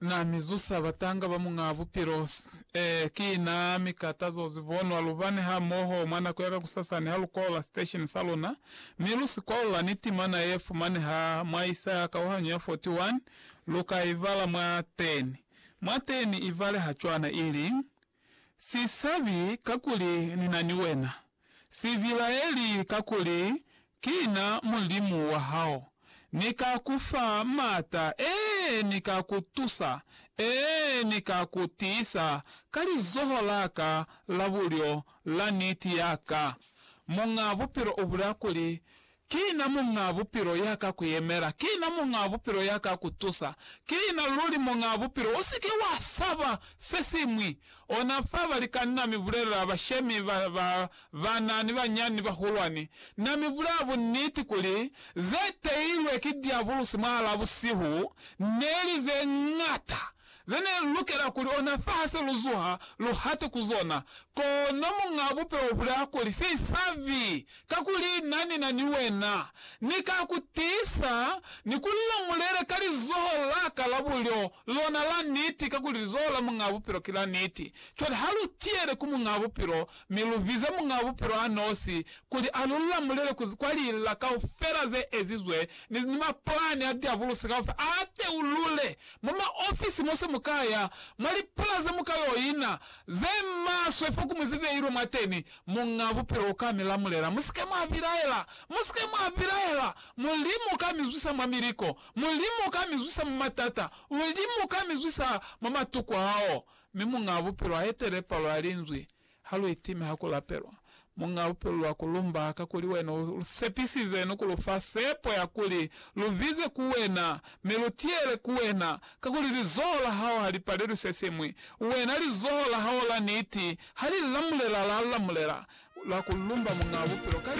Na mi zusa batanga ba Muñaa Bupilo. Ee, ki Na mi ka tazo zibonwa lu bane hamoho mwa nako ya kakusasani ha lu kwaula sitesheni sa luna, mi lu si kwaula ni timana ye fumaneha mwa Isaya kauhanyo ya 41, lu ka i bala mwa teni. Mwa teni i baleha cwana, ili, Si sabi, kakuli Ni na ni wena. Si bilaeli, kakuli Ki na Mulimu wa hao. Ni ka ku fa maata, ee, ni ka ku tusa, ee, ni ka ku tiisa ka lizoho la ka la bulyo la niti ya ka. Muñaa Bupilo u bulea kuli, Ki na Muñaa Bupilo ya ka ku yemela, ki na Muñaa Bupilo ya ka ku tusa, ki na luli Muñaa Bupilo. U si ke wa saba se siñwi, Ona fa balikani na mi bulelela bashemi ba ba bana ni banyinyani ni bahulwani, Na mi bulela buniti kuli, ze teilwe ki diabulusi mwahala busihu neli ze ñata ze ne lu lukela kuli ona fa ha se lu zuha, lu hate ku zona. Kono Muñ'a Bupilo u bulela kuli, Se isabi Kakuli Na nina ni wena, Ni ka ku tiisa, ni ku lamulela ka lizoho laka la bulyo, lona la niti, kakuli lizoho la Muñaa Bupilo ki la niti. Cwale ha lu tiyele ku Muñaa Bupilo, mi lu bize Muñaa Bupilo a nosi, kuli a lu lamulele ku, kwa lila kaufela ze ezizwe, ni, ni mapulani a diabulusi kaufela, a teulule mwa maofisi mo se mu ka ya, mwa lipula ze mu ka yo ina, ze maswe fo ku mu zibeilwe mwateni, Muñ'a Bupilo uka mi lamulela, Musike mwa bilaela! Musike mwa bilaela! Mulimu uka mi zwisa mwa miliko. Mulimu uka mi zwisa mwa matata. Mulimu uka mi zwisa mwa matuku ao. Mi Muñ'a Bupilo a etele palo ya Linzwi. Ha lu itime ha ku lapelwa. Muñ'a Bupilo lwa ku lumba, kakuli Wena u lu sepisize ni ku lu fa sepo ya kuli lu bize ku Wena, mi lu tiyele ku Wena, Kakuli lizoho la hao ha li palelwi se siñwi, wena lizoho la hao la niti ha li lamulela la lamulela, la ku lumba Muñaa Bupilo ka lika.